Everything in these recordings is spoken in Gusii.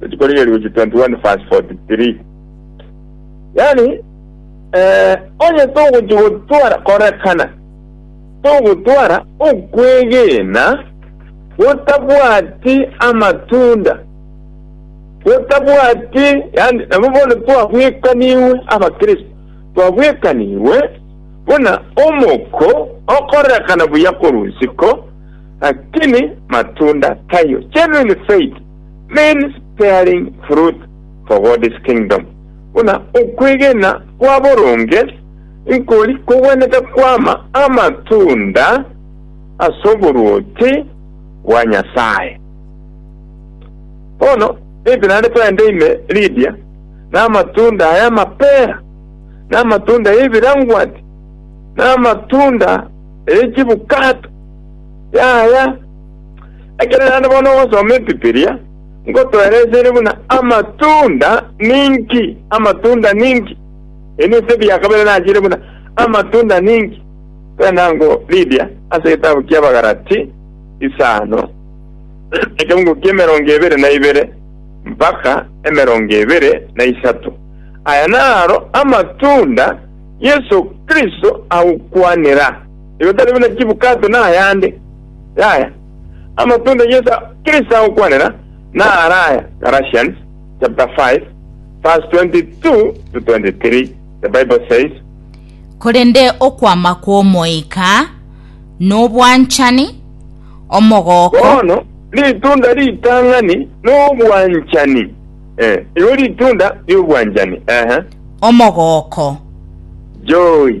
Rituko riria riuchi 21 verse 43 Yaani, eh, onye togochi gotwara korekana, togotwara okwegena gotabwati amatunda, gotabwati, yaani, nabo bono twabwekanigwe abakristo, twabwekanigwe buna omoko okorekana buya korwa isiko, lakini matunda taiyo, genuine faith. means bearing fruit for God's kingdom, buna okwegena kwa boronge nkori kogwenerete kwama amatunda as'oboruoti bwa Nyasaye. Bono nitinaende toende ime Lydia namatunda ay'amapera, namatunda y'ebirangwati, namatunda y'echibukato, yaya. Ekero naende bono ogosoma Ebibilia, nkotoeresere buna amatunda ninki, amatunda ninki. Ebi nebisaku bia kabere nachiire buna amatunda ninki. Tari nango Lydia ase egetabu ki'Abagalati isano, ekeungu ki'emerongo ebere na ibere mpaka emerongo ebere na isato. Aya naro amatunda Yeso Kristo agokwanera, igo tari buna chibukato na ayande. Yaya, amatunda a Yeso Kristo agokwanera naro aya, Galatians chapter 5 verse 22-23, the Bible says, Korende okwama kw'Omoika nobwanchani, omogooko, Bono ritunda ritang'ani nobwanchani. Eh, igo ritunda ri'obwanchani. Ehe. omogooko, Joy.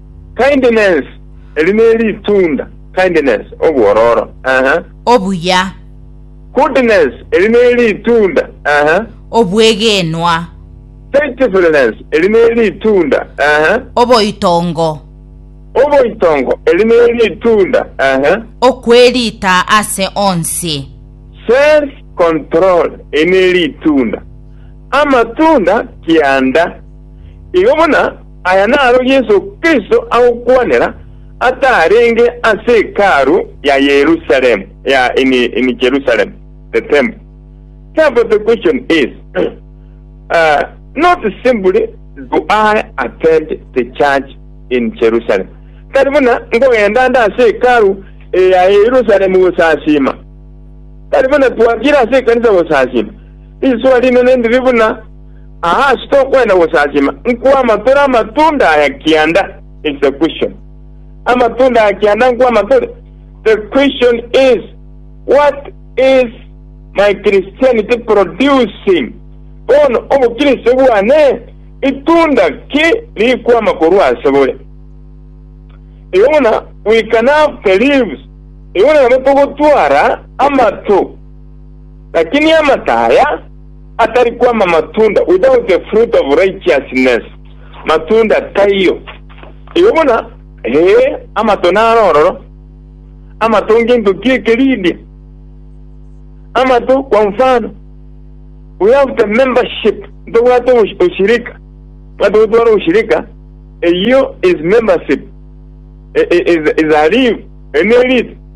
Kindness, eri neritunda, kindness, obwororo, eeh. Obuya. Goodness, eri neritunda, eeh. Obwegenwa. Faithfulness, eri neritunda, eeh. Oboitongo. Oboitongo, eri neritunda, eeh. Okwerita ase onsi. Self control, eri neritunda. Amatunda kianda, igo buna. Aya naro Yeso Kristo agokwanera atarenge ase Hekalu ya Yerusalemu, ya in Jerusalem, the temple. Therefore the question is, uh, not simply do I attend the church in Jerusalem, tari buna nkogenda nda ase Hekalu ya Yerusalemu gosasima, tari buna twakire ase ekanisa gosasima. Riswa rinene ndiri buna Aa ase tokwenda gosasima, nkwama tore amatunda aya kianda, is the question. Amatunda aya kianda nkwama tore, the question is, what is my Christianity producing? Bono obokristo bwane itunda ki rikwama korwa ase bore? Igo buna we can have the leaves, igo buna nabo togotwara amato, lakini amataya, Atari kwama matunda without the fruit of righteousness, matunda taiyo. Eyo buna, ee, amato naro ororo. Amato ngento ki'ekeridi. Amato, kwa mfano, we have the membership, ntobwate obosh- oshirika. Bwate gotwara oshirika, eyio is membership, i- i- is, is a leaf, eri neridi.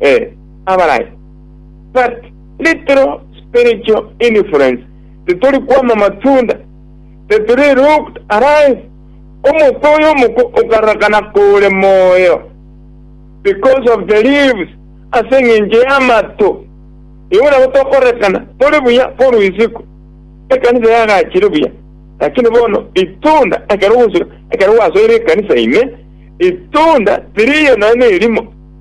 eh, abarai. But little spiritual influence, titori kwama matunda, tetiri looked alive, omote oyo omoko okarakana kore moyo because of the leaves, ase eng'encho y'amato. Igo nabo tokorekana tori buya korwa isiko, ekanisa yagachire buya, lakini bono itunda ekero ogosika, ekero gwasoire ekanisa ime, itunda tiriyo nonya nerimo.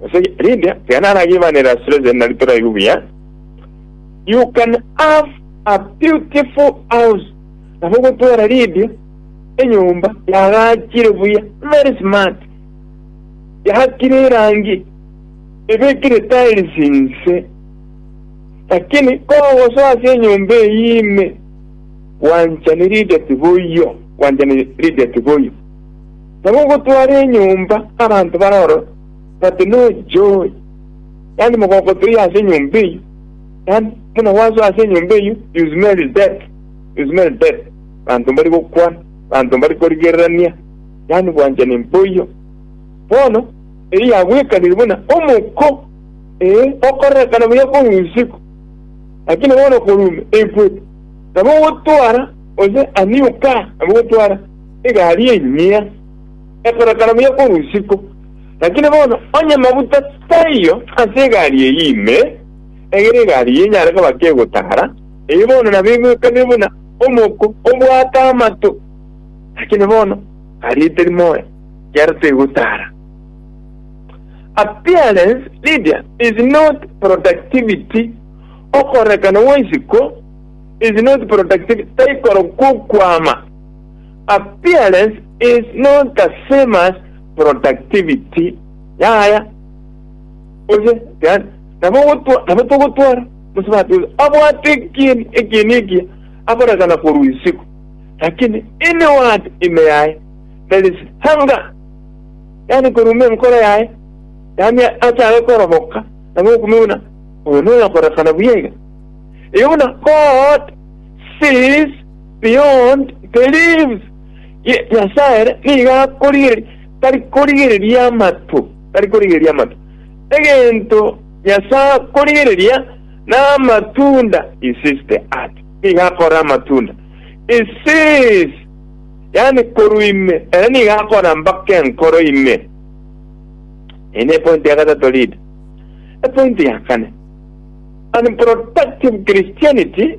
Gose rinde, tiga naragiibanere ase rionsi eri nari toraigwe buya, You can have a beautiful house. Nabo ogotwara rinde enyomba yagachire buya, very smart. Yakire erangi, ebekire tiles inse. Lakini kogosoa ase enyomba eyi ime, gwanchani rinde tiboiyo, gwanchani rinde tiboiyo. Nabo ogotwara enyomba abanto bare ororo, bati, Noche oye, yaani mogokoto oye ase enyomba eyio, yaani buna gwasoa ase enyomba eyio, you smell death, you smell death, abanto mbari gokwana, abanto mbari korigererania, yaani bwanchani mboiyo. Bono eyio yagwekanire buna omoko, ee, okorerekana buya korwa isiko, lakini bono korwa ime, ekwete. Nabo ogotwara, gose aniuka, nabo ogotwara. egari enyia ekorekana buya korwa isiko, lakini bono onye maguta taiyo ase egari eyio ime, egere egari eyio enyare koba ki egotara, eyio bono nabo egwekabia buna omoko obwate amato, lakini bono egari etari moyo, ekiagera tegotara. Appearance, Lydia, is not productivity, okorekana gwa isiko is not productivity, taikorokwa okwama. Appearance is not the same as productivity. Yaya. Gose, yani, nabo gotwa, nabo togotwara, gose batwara, abwate ekieni, ekieni ekia, akorekana korwa isiko. Lakini, inward ime yaye, there is hunger. Yani, korwa ime enkoro yaye, yani, achare koroboka, nabo okumia buna, oyo noyo akorekana buya iga. Igo buna God sees Beyond believes, Nyasae nigo akorigereria, tari korigereria amato, tari korigereria amato. Egento Nyasae akorigereria namatunda, he sees the heart, nigo akora amatunda. He sees, yani korwa ime, ere nigo akora mpaka enkoro ime. Eye ne point ya gatato lead. Epoint ya kane, unproductive Christianity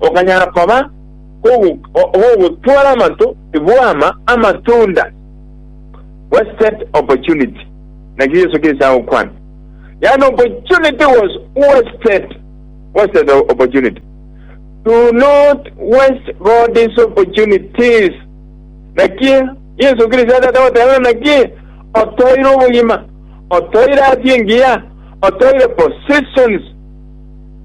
okanyara koba ogogotwara amanto bw'ama amatunda, wasted opportunity. Naki Yesu gese agokwana, yaani opportunity was wasted, wasted opportunity. Do not waste God's opportunities. Naki Yesu Kristo atata goteba naki otoire obogima, otoire afya engiya, otoire positions,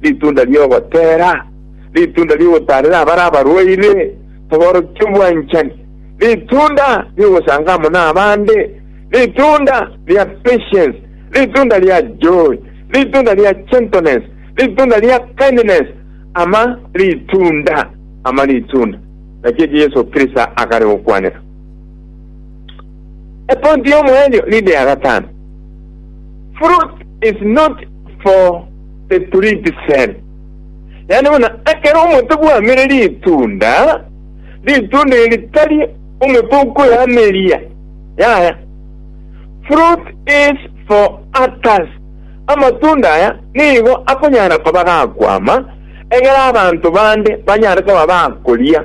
ritunda ri'ogoteera, ritunda ri'ogotaarera abare abarwaire, toborokia obwanchani, ritunda ri'ogosanga amo nabande, ritunda ria patience, ritunda ria joy, ritunda ria gentleness, ritunda ria kindness, ama ritunda, ama ritunda. Naki eki Yeso Kristo akare gokwanera. A point y'omoenyo ninde ya gatano. Fruit is not for the print cell. Yaani buna ekero omonto bwamire ritunda, ritunda eri tari omoto okoyameria. Yaya. Fruit is for others. Amatunda aya nigo akonyara koba gakwama egere abanto bande banyare koba bakoria.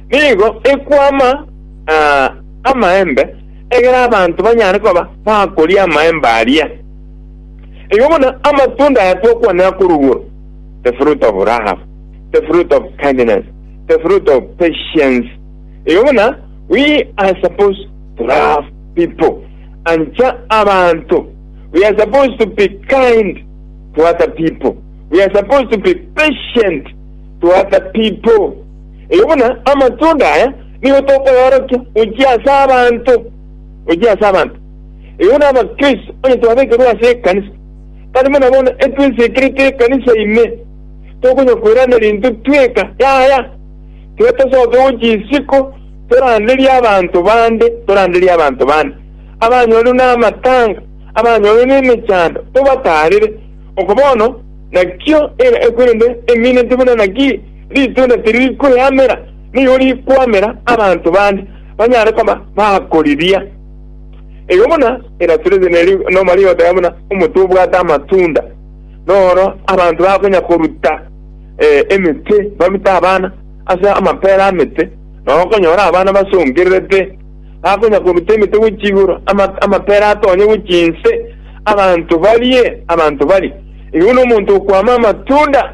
Nigo ekwama aa amaembe, egere abanto banyare koba bakoria amaembe aria. Igo buna amatunda aya twakwanera korwa igoro, the fruit of love, the fruit of kindness, the fruit of patience. Igo buna we are supposed to love people, ancha abanto. We are supposed to be kind to other people. We are supposed to be patient to other people. Erio buna amatunda aya nigo tokoyorokia gochia ase abanto, gochia ase abanto. Erio buna Abakristo, onye twabekerwe ase ekanisa, tari buna bono etwesekerete ekanisa ime, tokonyakoiraneria intwe tweka, yaya, tiga tosoke gochia isiko toranderie abanto bande, toranderie abanto bande abanyorire namatanga, abanyorire nemechando, tobataarere. Oko bono nakio ere ekweri ende emineti buna naki, Ritunda tiriri kweamera, nigo rikwamera abanto bande banyare koba bakoriria. Igo buna enasurete neri nomariota ya buna omote obwate amatunda, noro abanto bakonya koruta eh, emete, barute abana ase amapera amete, na okonyora abana basongererete, bakonya koruta emete gochia igoro, ama- amapera atonye gochia inse, abanto barie, abanto bari. Igo buna omonto okwama amatunda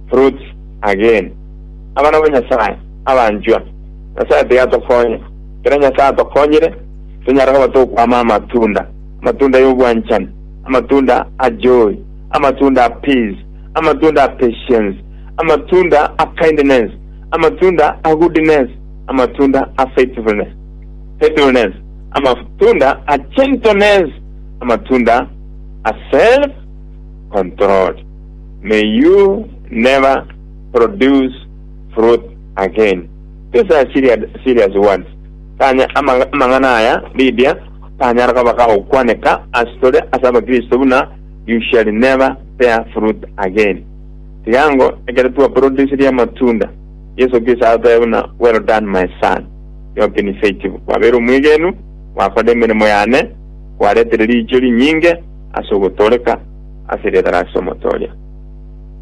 Fruits again. Abana ba Nyasae abanchwa, Nyasae tiga atokonye. Ekero Nyasae atokonyire, tonyare koba tokwama amatunda, amatunda y'obwanchani, amatunda a joy, amatunda a peace, amatunda a patience, amatunda a kindness, amatunda a goodness, amatunda a faithfulness, faithfulness, amatunda a gentleness, amatunda a self controlled. May you never produce fruit again. These are serious, serious words. Tanya, ama, amang'ana aya, Lydia, tanyara koba kagokwaneka ase tore ase abakristo buna you shall never bear fruit again. Tigango ekero twaproduciri amatunda, Yeso Kristo atotebe buna well done my son, you have been faithful. Kwabeire omwegenu, gwakorire emeremo yane, kwaretere riicho rinyinge ase ogotooreka ase ritara ase omotooria.